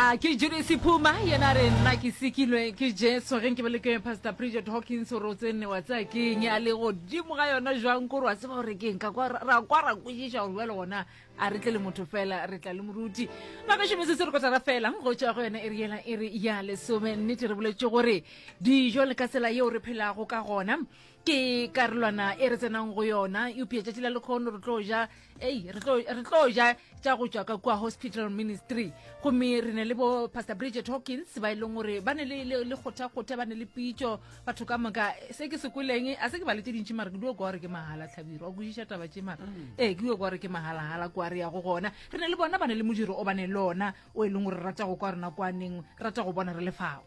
a ke judisi phuma yena re nna ke sekilwe ke jesu ge nke be le ke pastor bridget hawkins gore o tsene wa tsaya ke eng a le godimo ga yona jwang kore wa tseba gore ke eng ka kwa ra kwa ra kwešiša gore bjale gona a re tle le motho fela re tla le moruti magašome se se re kotara fela go tšwa go yona e re yela e re ya lesome nnete re boletše gore dijo le ka tsela yeo re phelago ka gona ke karolwana e re tsenang go yona eupša tšatši la lekgono re tlo ja ei re tlo ja tša go tšwa ka kua hospital ministry gomme re ne le bo pastor bridget hawkins ba e leng gore ba ne le kgothakgotha ba ne le pitšo batho ka moka se ke se kweleng a se ke ba le tse dintši mara ke dio kwa gore ke mahala tlhabiro wa kwešiša taba tše mara mm. ee ke dio kwa gore ke mahalagala kwa re ya go gona re ne le bona ba ne le modiro o ba ne le ona o e leng gore rata go kwa rena kwaneng rata go bona re lefago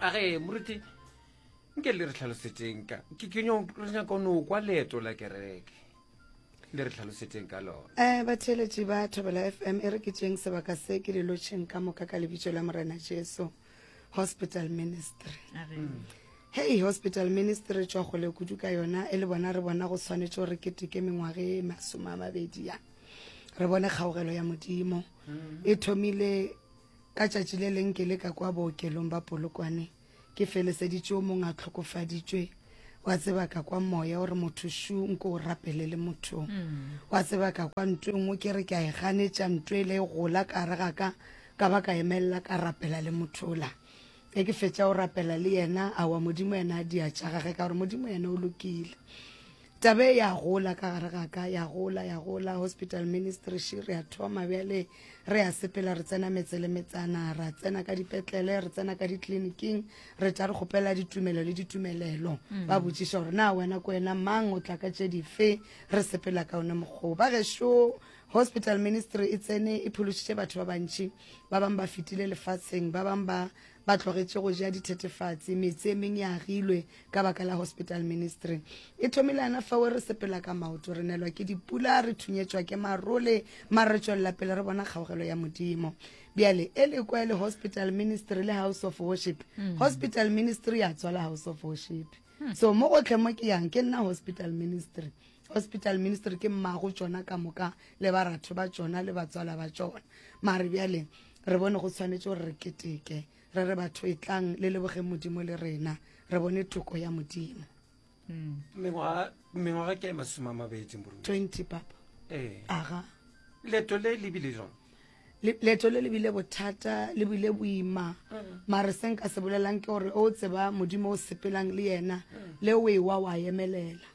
a ge moruti nke le re tlhalosetšeng ka ke ke nyong re nyaka o no kwa leeto la kereke le re tlhalosetšeng ka lona um batheeletši ba thobela f m e re ke tšeng sebaka se ke le lotšheng ka moka ka lebitso la morena jesu hospital ministry hei hospital ministry tšwa kgole kudu ka yona e le bona re bona go tshwanetše gore ke teke mengwaga e masome a mabedi ya re bone kgaogelo ya modimo e thomile Ka tšatši le leng ke le ka kwa bookelong ba Polokwane, ke feleseditše o mong a hlokofaditšwe, wa tseba ka kwa moya o re motho šu nko o rapele le motho. Wa tseba ka kwa ntwe nngwe ke re ke a e ganetša ntwe e le e gola ka gare ga ka, ka ba ka emelela ka rapela le motho ola. Ge ke fetša go rapela le yena, aowa Modimo yena a dia tša gage ka gore Modimo yena o lokile. tabe ya gola ka gare ga ka ya gola ya gola hospital ministry shi re a thoma bjale re a sepela re tsena metse le metsana ra tsena ka dipetlele re tsena ka ditleliniking re tla re kgopela ditumelo le ditumelelo mm. ba botšiša gore na wena ko wena mang o tla ka tše dife re sepela ka one mokgoo ba gešo hospital ministry e tsene e phološitše batho ba bantši ba bangwe ba fetile lefatsheng ba bangwe ba ba tlogetše go ja dithethefatsi metse e meng e agilwe ka baka la hospital ministry e thomile ana fawe re sepela ka maoto re nelwa ke dipula re thunyetšwa ke marole mare re tšwelela pele re bona kgaogelo ya modimo bjale e le kwa e le hospital ministry le house of worship mm. hospital ministry ya tswala house of worship So mo gotlhe mo ke yang ke nna hospital ministry. Hospital ministry ke mmago tšona ka moka le baratho ba tšona le batswala ba tšona. Mare bjale re bone go tshwanetse gore re keteke re re batho e tlang le lebogeng modimo le rena re bone toko ya modimo mengwaga mengwaga ke masome a mabedi moruti 20 papa ee aga leto le lebile jang leeto le le bile bothata le bile boima mare se nka se bolelang ke gore o tseba modimo o sepelang le yena le o ewa wa emelela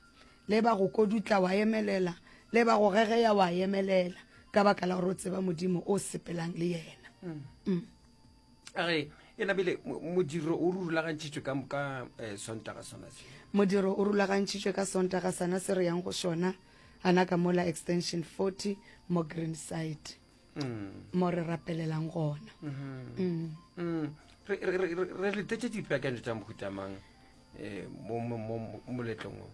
le ba go kodutla wa emelela le ba go gegeya wa emelela ka baka la gore o tseba modimo o sepelang le yena mm. age e nabile modiro o rulagantšhitswe ka moka eh, sontaga sona se modiro o rulagantšhitswe ka sontaga sana se re yang go sona ana ka mola extension 40 mo green side mm. mo re rapelelang gona mm-hmm. mm. re letetse dipeakanyo tsa mohutamang eh, mo moletlong o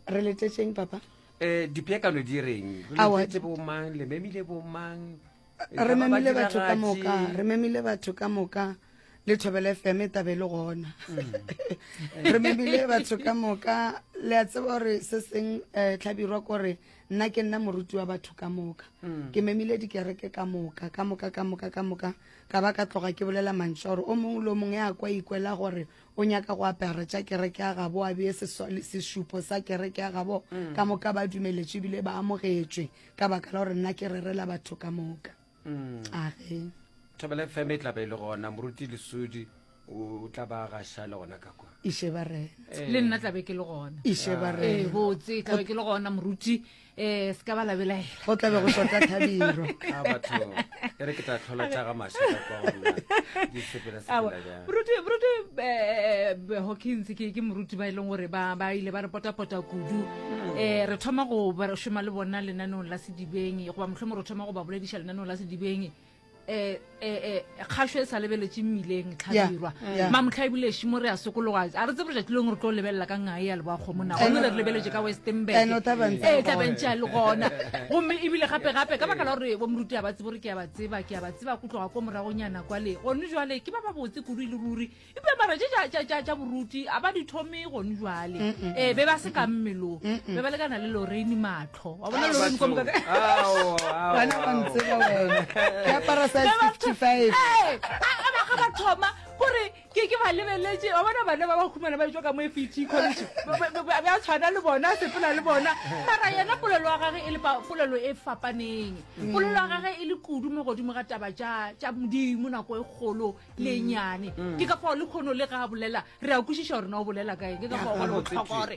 re letetseng papa um dipeakano di reng re letetse bomang le memile bomang re memile batho ka moka re memile batho ka moka le thobele fm e tabe le gona mm. re memile batho ka moka le a tseba gore se seng um tlhabirwa kore nna ke nna moruti wa batho ka moka mm. ke memile dikereke ka moka ka moka ka moka ka moka ka ba ka tloga ke bolela mantšha gore o mongwe le o mongwe ya kwa ikwela gore o nyaka go apara tša kereke ya gabo a bee sešupo sa kereke ya gabo mm. ka moka ba dumeletše ebile ba amogetšwe ka baka la gore nna ke rerela batho ka moka mm. age thobele feme e tlabe e le gona moruti lesudi o tla ba gaša le gona ka kwa iše ba rena eh. le nna tlabe ke le gona iše ba ah. eh, rena botse tlabe ke le gona moruti um se ka ba labelaela go tlabe go sota thabiro ah, e re ke tla tlhola tša ga mašaka kwa go nna di sepela sepela bjang moruti moruti eh, eh, hawkins ke ke moruti ba e leng gore ba ba ile ba re potapota kudu um re thoma go ba re šoma le bona lenaneong la sedibeng goba mohlomong re thoma go ba bolediša lenaneong la sedibeng um kgašo e sa lebeletše mmileng tlhabirwa mamotlha e buleši mo re a sokologa a re tsebore jatsi leng re tlo lebelela ka ngae ya leboa kgomona gomme re re lebeletse ka westenbergee tlabentse ya le gona gomme ebile gape gape ka baka la gore bo moruti a ba tsebo re ke a ba tseba ke a ba tseba ko tloga ko moragonyana kwale gone jale ke ba ba botse kudu e le ruri ebile mara je ja boruti a ba di thome gone jale ee be ba se ka mmelong be ba lekana le loreine matlo tho wa bona lo mo komka bana ba ntse ba wena ke apara size 55 a a ba ga ba thoma gore ke ke ba lebeletse wa bona bana ba ba khumana ba tswa ka mo FET college ba ba tshwana le bona sepela le bona mara yena polelo wa gage e le polelo e fapaneng mm. polelo wa gage e le kudu mo godimo ga taba tša tša modimo nako e kgolo le mm. nyane mm. ke ka fao le khono le ga bolela re a kwešiša gore na o bolela kae ke ka fao go le botlhokwa gore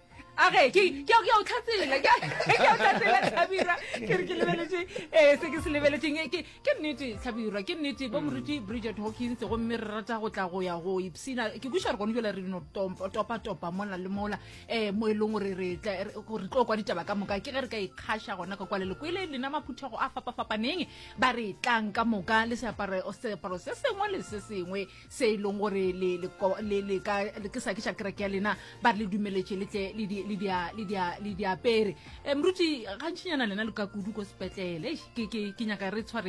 age ke ke ke o tlhatsela ke ke o tlhatsela tlhabira ke re ke lebeletse eh se ke se lebeletseng ke ke nnete tlhabira ke nnete bo moruti Bridget Hawkins go mme re rata go tla go ya go ipsina ke buša re gone jela re no topa topa mola le mola eh mo e leng gore re tla re tlo kwa ditaba ka moka ke ge re ka ikgasha gona ka kwale le kwele le nama phuthego a fapa fapaneng ba re tlang ka moka le seaparo seaparo se sengwe le se sengwe se e leng gore ke sa ke sa kereke ya lena ba re le dumeletše le tle le diapere um ruti gantšhinyana lena le ka kudu ko sepetlele ke nyaka re tshware